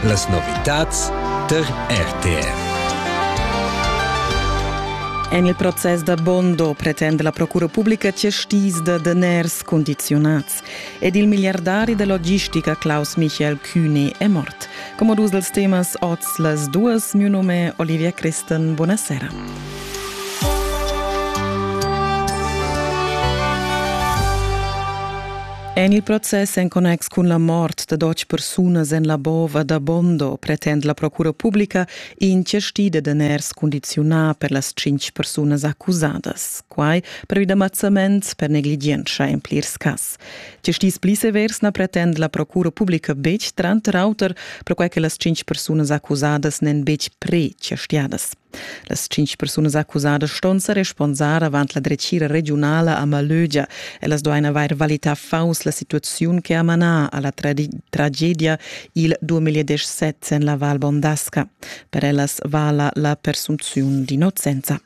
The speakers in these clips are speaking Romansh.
Las novitads tar RTR. En il process da Bondo pretende la Procura pubblica cestis da daners condiziunats ed il miliardari da logistica Klaus Michael Kühne è mort. Come dus dels temas oz las duas, mio nome Olivia Christen, buonasera. En il process en connex cun la mort da dotg persunas en la bova da Bondo pretend la procura publica incertida da ners condiziunar per las cinc persunas accusadas. Quai per vid ammazzament per negligienza en plirs cas. Gestis pli severs na pretend la procura publica betg, tranter auter, perquai che las cinc persunas accusadas n'en betg pre-cerstiadas. Las tschintg persunas accusadas ston sa responsar avant la dretgira regiunala a Malögia. Ellas duain avair valità faus la situaziun che ha manà alla tragedia il 2017 en la Val Bondasca. Per ellas vala la persunziun d'innocenza.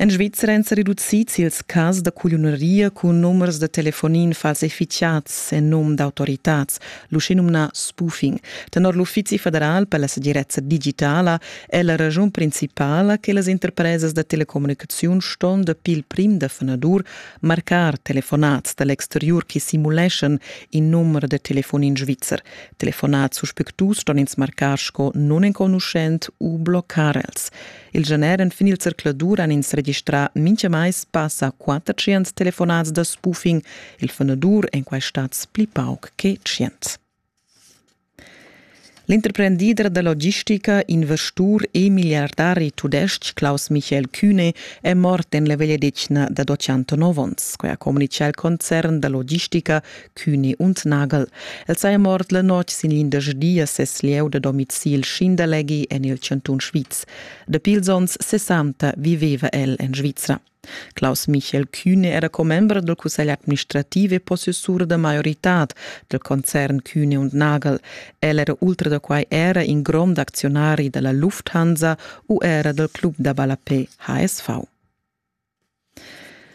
En Svizzera èn sa reducids ils cas da cugliuneria cun numers da telefonin falsificads en num d'autoritads, l'uschenumnà spoofing. Tenor l'Uffizi federal per la segirezza digitala è la raschun principala che las interpresas da telecommunicaziun ston dapi il prim da fanadur marcar telefonats da l'exteriur che simuleschan in numero da telefonin svizzer. Telefonats suspectus ston ins marcar sco nunenconuschent u bloccar els. Il gener enfin il zercladur han ins registrà mintgamais passa 400 telefonats da spoofing. Il funadur èn quai stads pli pauc che 100. L'interprendider da logistica, investur e miliardari tudestg Klaus Michael Kühne è mort en la vegliadetgna dad 89 onns. Quai ha communitgà il concern da logistica Cüni und Nagel. El saja mort la notg sin l'indersdia ses lieu da domicil Schinderleghi en il chantun Sviz. Dapi ils onns 60 viveva el en Svizra. Klaus Michael Kühne era commember del Cussegl administrativ e possessur da maioritad del concern Kühne und Nagel. El era ultra da quai era in grond aczionari della Lufthansa u era del club da ballapé HSV.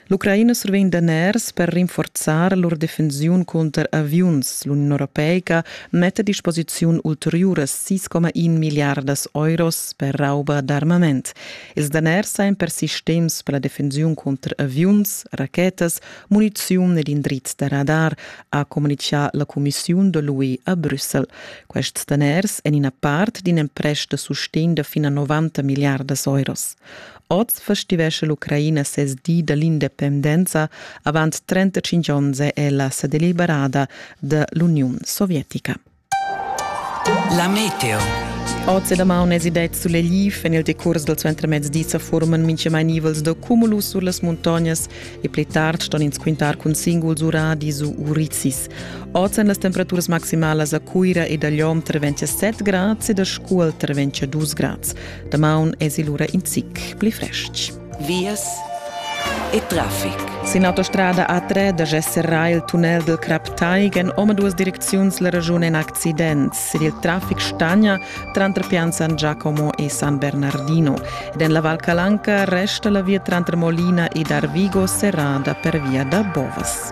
L'Ucraina survegn daners per rinforzar lur defensiun cunter aviuns. L'Uniun europeica metta a disposiziun ulteriuras 6,1 miliardas euros per rauba d'armament. Ils daners sajan per sistems per la defensiun cunter aviuns, rachetas, muniziun ed indrizs da radar, ha communitgà la cumissiun da l'UE a Brüssel. Quests daners èn ina part d'in emprest da sustegn da fin a 90 miliardas euros. Oz festivescha l'Ucraina ses di da l'independenza. Avant 35 onns è ella sa deliberada da l'Uniun sovietica. La meteo. Oz e damaun es idet sulegl. En il decurs dal suentermezdi sa forman mintgamai nivels da cumulus sur las muntognas e pli tard ston ins quintar cun singuls uradis u urizis. Oz èn las temperaturas maximalas a Cuira ed a Lom tra 27 grads ed a Scuol tra 22 grads. Damaun es il ura in zic pli fresc. Vias e traffic. Sin autostrada A3 da gesserà il tunnel del Crap Taigen omaduas direcziuns la regiun in accident ed il traffic stagna tranter Pian Giacomo e San Bernardino. Ed en la Val Calanca resta la via tranter Molina ed Arvigo serrada per via da Bovas.